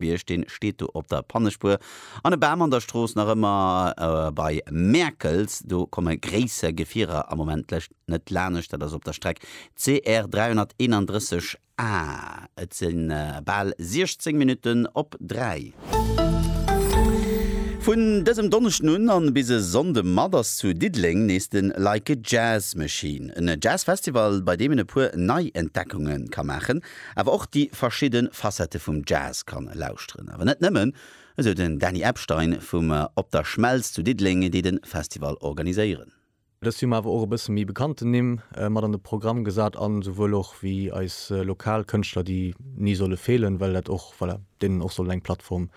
Bierg, deen steet do op der Pannespuer, an e Bam an der Strooss nach ëmmer bei Mäerkels. Do komme gréisser Gefierer am Moment lech net lanescht, dat ass op der Streck CR 331 A. Et si bal 16 Minutten op 3. Vun dësem Donneschden un an bis e Sonnde mat ass zu Diddeleng nees de Like a Jazz Machine, en Jazz Festival bei deem een e puer Neientdeckungen ka maachen. awer och déi verschidde Facette vum Jazz kann lauschteren. Awer net nëmmen, esou den Dany Epstein vum Op der Schmelz zu Diddeleng, déi de Festival organiséieren. Dëst Joer hunn mer awer och e bësse méi bekannten Nimm mat an de Programm gesat an esouwuel och wéi eis lokal Kënschtler, déi ni solle feelen, well dat och, voilà, deenen och soll eng Plattform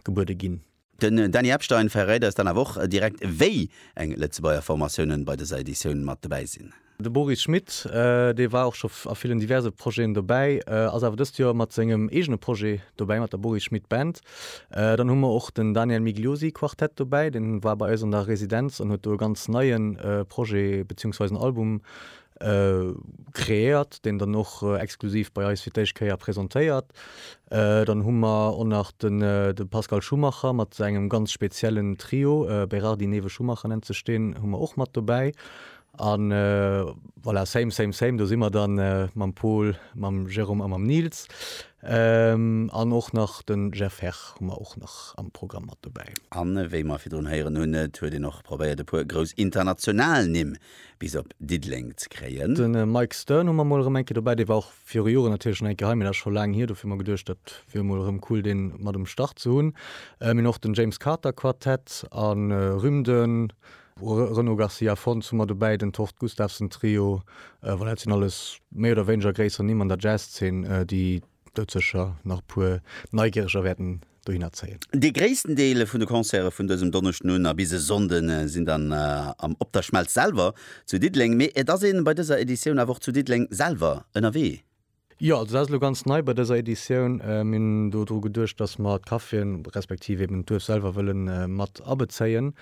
gebuede ginn. Den Dany Epstein verréit eis dann awer och direkt wéi eng Lëtzebuerger Formatiounen bei dëser Editioun mat dobäi sinn. De Boris Schmidt, dee war och scho a villen diverse Projeten dobäi, ass awer dëst Joer mat sengem eegene Projet dobäi, mat der Boris Schmidt Band. Dann hu mer och den Daniel Migliosi Quartett dobäi, deen war bei eis an der Residenz an huet do e ganz neien Projet beziehungsweise en Album Kreéiert, deen dann och exklusiv bei eis fir d'éischt Kéier presentéiert. Dann hu mer och nach de Pascal Schumacher mat sengem ganz speziellen Trio, Berardi, Newe, Schumacher nennt sech deen, hu mer och mat dobäi. A voilà, same, same, same, do si mer dann mam Pol, mam Jérôme a mam Nils. An och nach de Jeff Herr hu mer och nach am Programm mat dobäi. A wéi mer virdrun héieren hunn, et huet een och probéiert e puer grouss international Nimm bis op Diddeleng ze kréien. Den Mike Stern hu mer mol erëm eng Kéier dobäi. Dee war och viru Joren natierlech schon eng Kéier hei, mee dat ass scho laang hier. Dofir hu mer geduecht, dat wier mol erëm cool deen mat um Start ze hunn. Mir hunn och den James Carter Quartett a Rym, den Renaud Garcia Fons hu mer dobäi, den Tord Gustavsen Trio. Voilà, dat sinn alles méi oder wéineger gréisser Nimm an der Jazz Zeen, déi Douzeger nach e puer Neigieriger wäerten dohinner zéien. Dee gréissten Deel vun de Concerte vun dësem Donneschden un a bis e Sonnde sinn dann am Op der Schmelz selwer zu Diddeleng. Mee et ass een bei dëser Editioun awer och zu Diddeleng selwer ënnerwee. Jo, also dat ass elo ganz nei bei dëser Editioun. Mir hunn do dru geduecht, dass mer d'Caféen, respektiv eben d'Duerf selwer wëlle mat abezéien.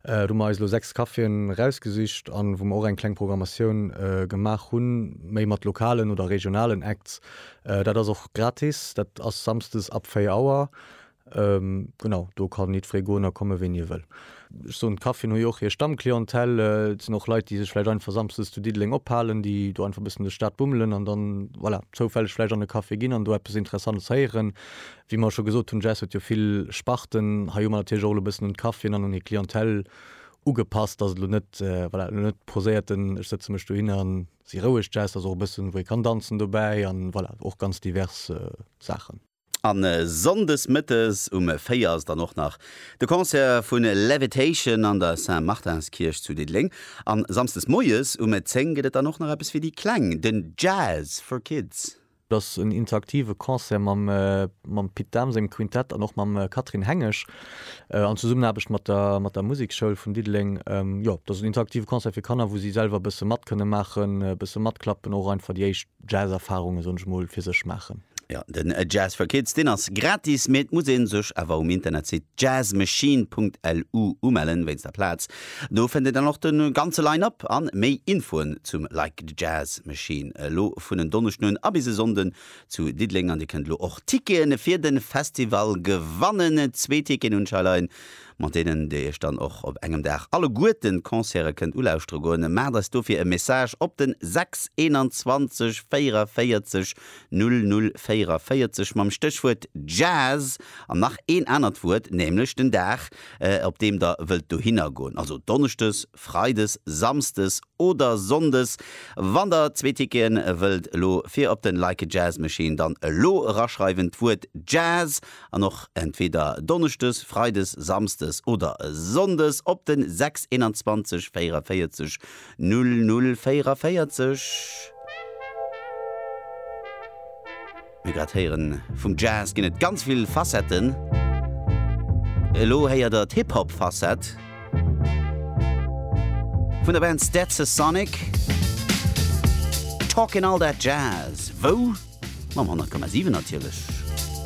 Do hu mer eis elo 6 Caféen erausgesicht a wou mer och eng kleng Programmatioun gemaach hunn, méi mat lokalen oder regionalen Acts. Dat ass och gratis, dat ass samsdes ab 4 Auer. Genau, do kann jiddweree goen a komme wéini e wëll. Ech soen, d'Caffien hu jo och hir Stammclientèle, et sinn och Leit, déi sech vläicht einfach samsdes zu Diddeleng ophalen, déi do einfach e bëssen duerch d'Stad bummelen an dann, voilà, zoufälleg vläicht an e Café ginn an do eppes Interessantes héieren. Wéi mer scho gesot hunn, d'Jazz huet jo vill Sparten. Hei hu mer natierlech och elo e bëssen un d'Caffien an un hir Clientèle ugepasst, dass et elo net, voilà, elo net poséiert den ech sëtze mech dohin an, Si roueg Jazz, ass och e bëssen wou ee kann danzen dobäi an voilà, och ganz divers Saachen. A Sonndes Mëttes um 4 ass dann och nach de Concert vu Levitation an der Saint-Martinskierch zu Diddeleng an Samsdes Moies um 10 gëtt et dann och nach eppes fir déi Kleng, den Jazz for Kids. Et ass en interaktive Concert mam Pit Dahm sengem Quintett an och mam Catherine Hengesch an Zesummenaarbecht mat der Musekschoul vun Diddeleng. Jo, et ass en interaktive Concert fir Kanner, wou si selwer e bësse mat kënne maachen, e bësse matklappen, och einfach déi éischt Jazz-Erfarunge, soen ech emol, fir sech maachen. Jo, den Jazz for Kids, deen ass gratis, mee et muss ee sech awer um Internetsite jazzmachine.lu umellen, wéinst der Plaz, Do fënnt Dir dann och de ganze Line-Up an méi Infoen zum Like the Jazz Machine elo vun en Donneschden un a bis e Sonnden zu Diddeleng. An Dir kënnt elo och Ticketen fir de Festival gewannen, zwee Ticketen un Shyline, mat deenen Dir Iech dann och op engem Dag alleguerten d'Concerte kënnt ulauschtere goen. Maacht eis dofir e Message op den 6 21 44 00 44 mam Stéchwuert Jazz an nach een anert Wuert, nämlech den Dag op deem der wëllt dohinner goen, also donneschdes, freides, samsdes oder sonndes. Wann der zwee Ticketen wëllt elo fir op den Like a Jazz Machine, dann elo eraschreiwen d'Wuert Jazz an och entweder donneschdes, freides, samsdes oder sonndes op den 621 44 00 44. Mir grad héieren, vum Jazz ginn et ganz vill Facetten. Elo héiert der d'Hip-Hop Facette vun der Band Stetsasonic. Talkin' all that jazz, wou? Mam 100,7 natierlech.